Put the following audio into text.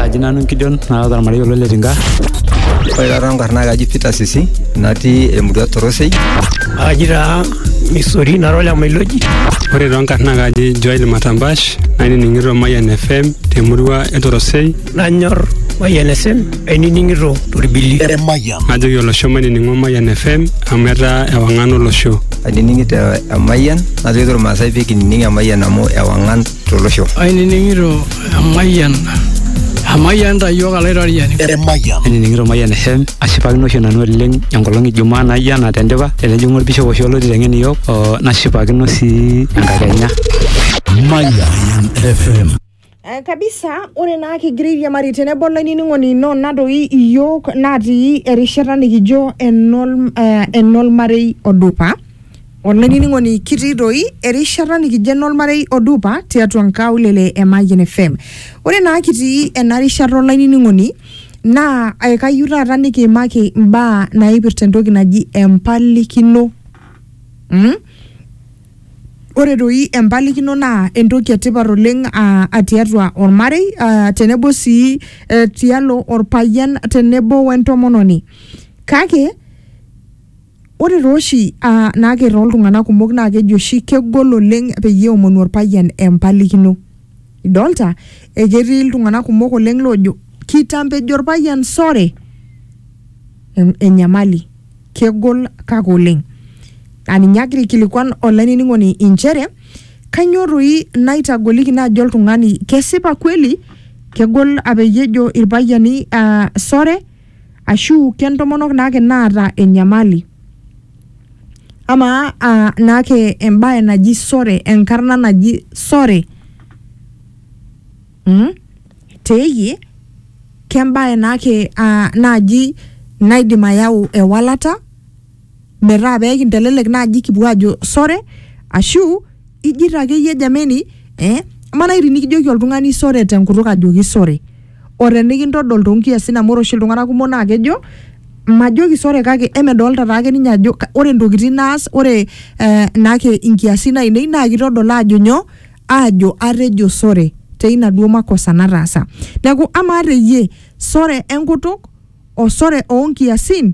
Aji nanu Gideon naata ormarei olo le Tinga. Ore taata nkarna ai kaji Peter Sisi natii emurua Torosei. Aji taa Misori nara ole Mailoji. Ore too nkarna ai kaji Joel Matambash nainining'ito Mayian FM temurua e Torosei. Nanyor Mayian FM ainining'ito torbili. Najoki olosho mainining'o Mayian FM amu etaa ewang'an olosho. Ainining'ito Emayian najoki irmaasai pee kinining Emayian amu ewang'an tolosho. Ainining'ito emayian emayian ta iyiook alaitoriani. Emayian. Ainining'ito emayian FM ashipakino oshi nanu oleng enkolong e Jumaa naijo ena tendipa tenejing'u olbishop oshi olo aiteng'en iyiook o nashipakino sii enkakenya. Mayan FM. Eh, kabisa ore naa kigira airiamari tenebo olainining'oni ino nadoi iyiook natii erishata nikijo enol, eh, enolmarei odupa Olainining'oni kitii doi erishata nikijo enolmarei odupa tiatua nkaulele e Mayian FM. Ore naa kitii ena rishata olainining'oni naa aikayu taata nikiimaki mbaa naipirta entoki naji empalikino. Mm? Ore doi empalikino naa entoki etipat oleng aa a tiatua olmarei aa tenebo sii eh, tialo olpayian tenebo wentomononi. Kake Ore taa oshi aa naake too ltung'anak kumok naake eji oshi kegol oleng' peyie eomonu orpayian empalikino. Idolta ee ketii iltung'anak kumok oleng' loojo kitambo ejo orpayian sore enyamali kegol kake oleng'. Naa ninye agira aikilikuan olainining'oni inchere kanyoo toi naitagoliki naaji oltung'ani kesipa kweli kegol aa peyie ejo irpayiani aa sore? ashu ke ntomonok naake naata enyamali. Amaa aa naake embaye naji sore enkarna naji sore mmh teiyie ke embaye naake aa naji naidim ayau ewalata. metaa pee kintelelek naaji kipuo aajo sore ashu ijito akeyie jameni eh, amaa naaji tinikijoki oltung'ani sore tenkutuk ajoki sore o tenikintodol toonkiasin amu ore oshi iltung'anak kumok naa kejo majoki sore kake emedolta taake ninye ajo ka- ore ntokitin naas ore eh, naake inkiasin ainei naa kitodol aajo nyoo aajo atejo sore teina duo makosa nataasa neeku amaa teyie sore enkutuk o sore oonkiasin